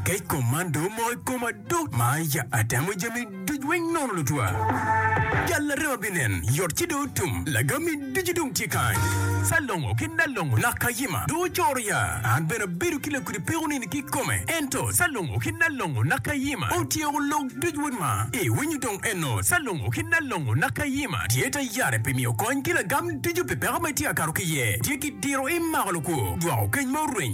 Kec kom man dong omoko i koma dok ma ya atemo jami duc weng nono lutwa. Jal larema binen, yot ci dong otum, lagami ducu dong tye kany. Salongo ki Nalongo nak kayima dong ocoro ya. An bene abedo ki lakudi peko nini ki kome, ento Salongo ki Nalongo nak kayima otyeko lok duc wod ma. Iwinyo dong eno, Salongo ki Nalongo nak kayima tye tayari pi miyo kony ki lagam ducu pi peko ma itye ka kato ki iye, tye ki diro imako lukwo, jwako keny ma oreny,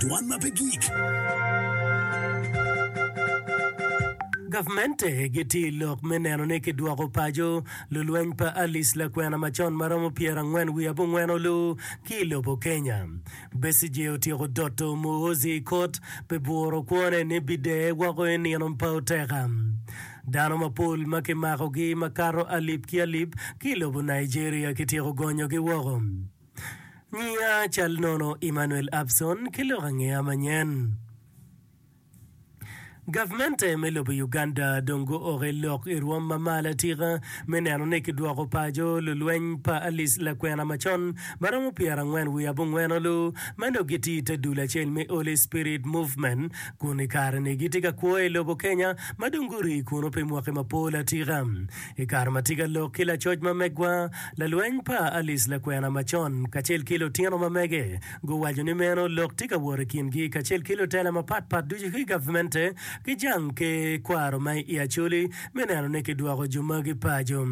Dwan ma pe gik. Gavmente gitye i lok me neno ni kidwoko paco lulweny pa Alice lakwena macon ma romo pyerangwen wiye abongwen olu ki i lobo Kenya. Besigye otyeko doto Muhoozi i kot pi bwuro kwone ni bideye woko i nino pa oteka. Dano mapol ma kimakogi makato alip ki alip ki i lobo Nigeria kityeko gonyogi woko. Nyinga cal nono Emmanuel Abson ki lok angeya manyen. Gavmente me lobo Uganda dong guoke lok i rwom ma malo atika me neno ni kidwoko paco lulweny pa Alice lakwena macon ma romo pyera angwen wiye abongweno lu ma dong gitye ite dul acel me Holy Spirit Movement kun i kare ni gitye ka kwo i lobo Kenya ma dong guri kunu pi mwaki mapol atika. I kare ma tika lok ki lacoc ma megwa, lalweny pa Alice lakwena macon, kacel ki lutino ma mege guwaco ni meno lok tye ka wot i kingi kacel ki lutela mapat pat ducu ki gavmente ki jang ki kwaro ma i Acholi me neno ni kidwoko jo magi paco.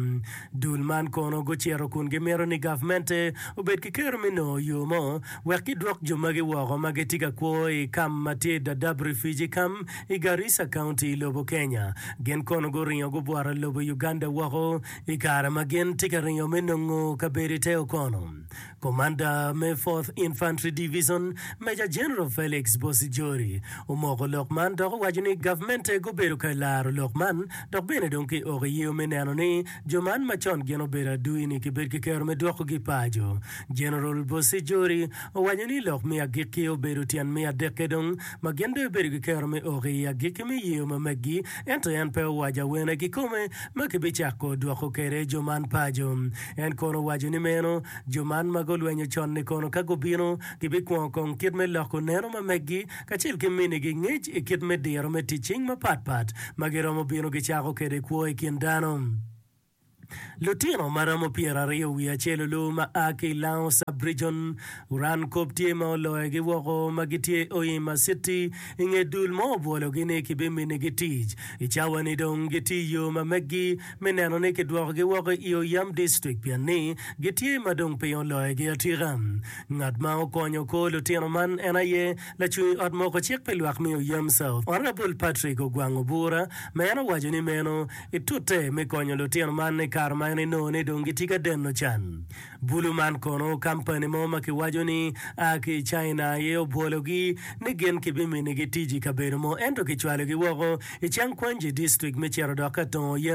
Dul man kono gucito kun gimito ni gavmente obed ki kero me nongo yo mo wek gidwok jo magi woko ma gitye ka kwo i kam ma tye Dadaab Refugee Camp i Garissa County i lobo Kenya. Gin kono guringo gubworo lobo Uganda woko i kare ma gin tye ka ringo me nongo kabedo i te Okono. Komanda me Fourth Infantry Division, Major General Felix Bosijori, omoko lok man dok owaco ni gavmente gubedo ka laro lok man dok bene dong ki oko i yeo me neno ni jo man ma con gin obedo adui-ni kibed ki kero me dwokogi paco. Jeneral Bosejouri owaco ni lok me agikki obedo tyen me adekke dong ma gin dong gibedo ki kero me oko i agikki me yeyo ma meggi ento en pe owaco awene kikome ma kibicako dwoko kwede jo man paco. En kono owaco ni meno jo man ma gulwenyo con-ni kono ka gubino gibikwongo kong kit me loko neno ma meggi kacel ki minigi ngec i kit me diro me tic cing mapatpat ma giromo bino gicako kwede kwo i kin dano. Lutino ma romo pyeraryo wiye acel olu ma a ki i Lango Sub-Rijon guran kop tye ma oloyogi woko ma gitye Hoima City i nge dul mo obwologi ni kibiminigi tic. I cawa-ni dong gitye i yo ma meggi me neno ni kidwokogi woko i Oyam District pien ni gitye ma dong piny oloyogi atika. Ngat ma okonyo kor lutino man en aye lacung i Ot Moko Cik pi Lwak me Oyam South, Honourable Patrick Ogwang Obura ma en owaco ni meno Itute me konyo lutino man i kare ma en inongo ni dong gitye ka deno can. Bulu man kono kampani mo ma kiwaco ni a ki i China aye obwologi ni gin kibiminigi tic i kabedo mo ento kicwalogi woko i Changquanji District me cito dok ka tongo yen.